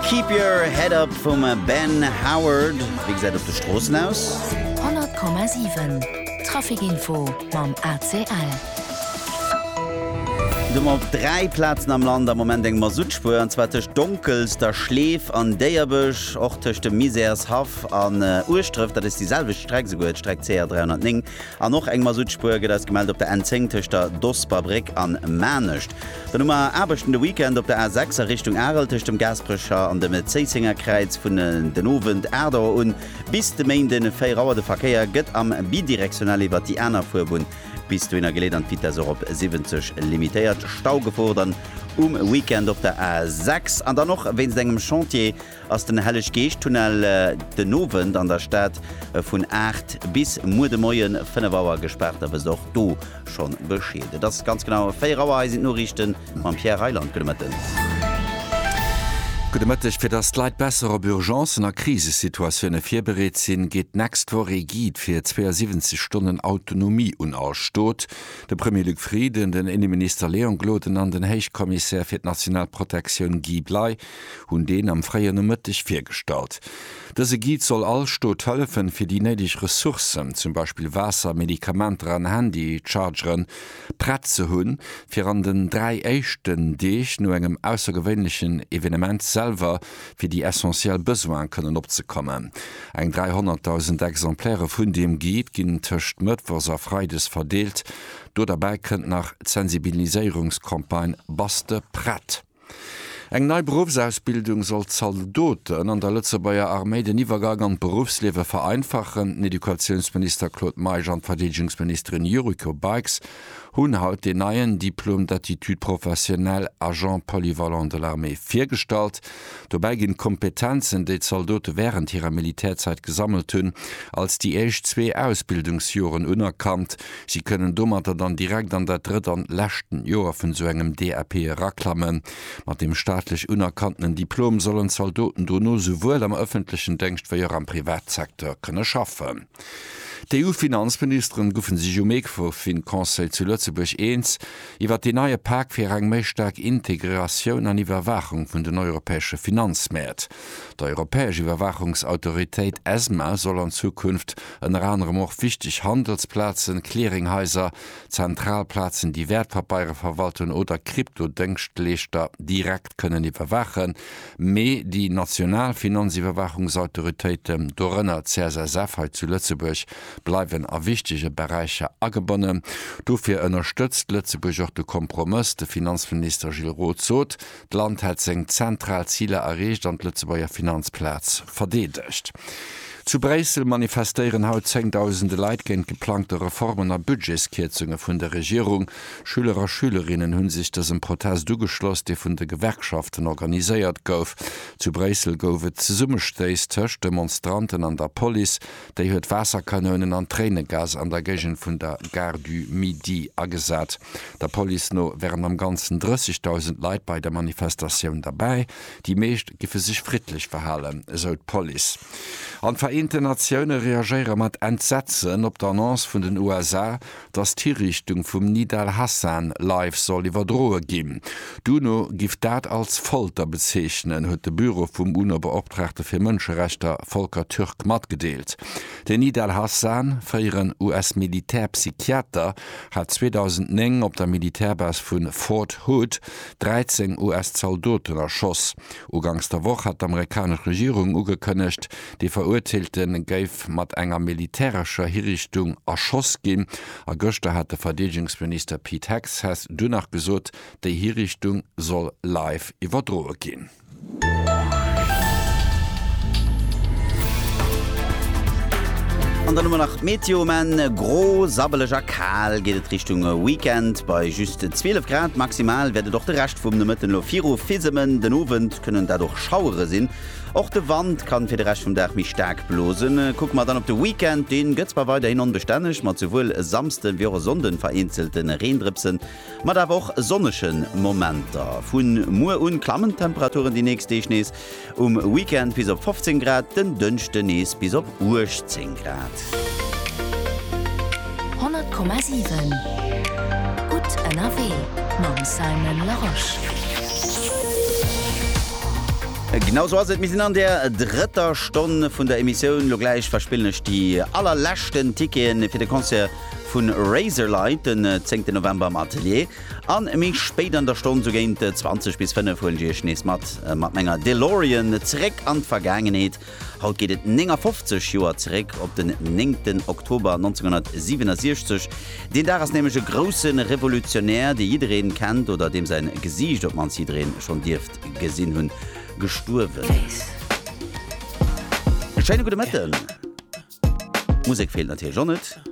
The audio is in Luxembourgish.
Keep Your Head Up vum Ben Howard, wéi gesäit op de Stroossen aus? 100,7 Trafikinfo mam ACL. Do mer op dräi Plazen am Land am Moment eng Masuttspuer, an zwar tëscht Donkelster, Schleef an Déierbech, och tëscht dem Misärshaff an Ueschdref, dat ass déi selwecht Streck esouguer, d'Streck CR 309, an och eng Masuttspuer gëtt eis gemellt op der N10 tëscht der Dosperbréck an Maarnech. Dann hu mer Aarbechten de Weekend op der A 6 a Richtung Arel tëscht dem Gaasperecher an dem Zéisséngerkräiz. Vun den Owend 8 Auer un bis de Méinde 4 Auer. De Verkéier gëtt am bidirectionnel iwwert déi aner Fuerbunn bis dohinner geleet an d'Vitess och op 70 limitéiert. Stau gefoocht dann um Weekend op der A 6 an dann och wéinst engem Chantier ass den Helleg-Geescht-Tunnel den Owend an der Stad vun 8 bis muer de Moie 5 Auer gespaart a wësst och do schonn Bescheed. Et ass ganz genau 4 Auer. Hei sinn d'Noriichte mam Pierre Reyland. Gudde Mëtten. Gudde Mëtteg. Fir datt d'Leit besser op Urgencen a Krisesituatioune virbereet sinn, geet d'nächst Woch ee Guide fir 72 Stonnen Autonomie un all Stot. De Premier Luc Frieden, den Inneminister Léon Gloden an den Héichkommissär fir d'national Protektioun Guy Bley hunn deen am fréien Nomëtteg virgestallt. Dëse Guide soll all Stot hëllefen, fir déi néideg Ressourcen, zum Beispill Waasser, Medikamenter an Handy-Chargeren, prett ze hunn, fir an den dräi éischten Deeg no engem aussergewéinlechen Evenement selwer fir déi essentiell Besoine kënnen opzekommen. Eng 300.000 Exemplairë vun deem Guide ginn tëscht mëttwochs a freides verdeelt. Do derbäi kënnt nach d'Sensibiliséierungscampagne Bass de prett? Eng nei Beruffsausbildung soll Zaldoten an der Lëtzebuerger Arméi den Iwwergang an d'Beruffsliewe vereinfachen. Den Educatiounsminister Claude Meisch an d'Verdeedegungsministerin Yuriko Baix hunn haut deen neien Diplôme d'aptitude professionnelle agent polyvalent de l'armée virgestallt. Dobäi ginn d'Kompetenzen, déi d'Zaldote wärend hirer Militärzäit gesammelt hunn, als déi éischt zwee Ausbildungsjoren unerkannt. Si kënnen domatter dann direkt an dat drëtt an lescht Joer vun esou engem DAP eraklammen. Mat deem staatlech unerkanntenen Diplom sollen d'Zaldoten dono souwuel am ëffentlechen Déngscht wéi och am Privatsecteur kënne schaffen. D'EU-Finanzministeren goufen sech um Ecofin-Conseil zu Lëtzebuerg eens iwwert deen neie Pak fir eng méi staark Integratioun an Iwwerwaachung vun den europäesche Finanzmäert. D'Europäesch Iwwerwaachungsautoritéit, ESMA, soll an Zukunft ënner anerem och wichteg Handelsplazen, Clearinghaiser, zentral Plazen, déi Wäertpapeiere verwalten, oder Krypto-Dëngschtleeschter direkt kënnen iwwerwaachen. Mee déi national Finanziwwerwaachungsautoritéiten, dorënner d'CSSF hei zu Lëtzebuerg, bleiwen a wichtege Beräicher agebonnen. Dofir ënnerstëtzt Lëtzebuerg och de Kompromëss. De Finanzminister Gilles Roth sot, d'Land hätt seng zentral Ziler erreecht an d'Lëtzebuerger Finanzplaz verdeedegt. Zu Bréissel manifestéieren haut zéngdausende Leit géint geplangte Reformen a Budgetskierzunge vun der Regierung. Schüler a Schülerinnen hu sech dësem Protest ugeschloss, dee vun de Gewerkschaften organiséiert gouf. Zu Bréissel gouf et Zesummestéiss tëscht Demonstranten an der Police, déi huet Waasserkanounen an Tréinegas an der Géigend vun der Gare du Midi agesat. Der Police no wären am Ganzen 30.000 Leit bei der Manifestatioun derbäi. Déi meescht géife sech friddlech verhalen, esou d'Police. An d'Vereenten Natioune reagéiere mat Entsetzen op d'Annonce vun den USA, datt d'Hiriichtung vum Nida al-Hassan live soll iwwerdroe ginn. D'UNO giff dat als Folter bezeechnen, huet de Büro vum UNO-Beoptraagte fir Mënscherechter Volker Türk matgedeelt. Den Nida al-Hassan, fréieren US-Militär-Psychiater, hat 2009 op der Militärbas vu Fort Hood 13 US-Zaldoten erschoss. Uganks der Woch hat d'amerikanesch Regierung ugekënnegt, De Verurteelte géif mat enger militärescher Hirichtung erschoss ginn. A gëschter hat de Verdeedegungsminister Pete Hegseth dunn nach gesot, déi Hirichtung soll live iwwerdroe ginn. An dann hu mer nach d'Meteo, um Enn gro, sabbeleg a kal geet et Richtung Weekend. Bei just 12 Grad maximal wäert et och de Rescht vum Nomëtten elo viru fissemen. Den Owend kënnen dat och Schauere sinn. Och de Wand kann fir de Rescht vum Dag méi staark blosen. Kucke mer dann op de Weekend, deen gëtt zwar weiderhin onbestänneg, mat souwuel e Samsden wéi och e Sonnden vereenzele Reendrëpsen, mat awer och sonnege Momenter. Vu muer un klammen d'Temperaturen déi nächst Deeg nees, um Weekend bis op 15 Grad, den Dënschde nees bis op 18 Grad. 100,7 Gutt ënnerwee mam Simon Larosche. Genau sou ass et, mir sinn an der drëtter Stonn vun der Emissioun. Lo gläich verspillen ech déi allerleschten Ticketen fir de Concert vu Razorlight den 10 November am Atelier. An méi spéit an der Stonn, sou géint 20 bis 5, huelen ech Iech nees mat, mat menger Delorean zeréck an d'Vergaangenheet. Haut geet et 59 Joer zeréck op den 9 Oktober 1967. Deen Dag ass nämlech e grousse Revolutionär, dee jiddereen kennt oder deem säin Gesiicht op d'mannst jiddereen schonn dierft gesinn hunn, gestuerwen. E schéine gudde Mëtten. D'Musek feelt natierlech och net.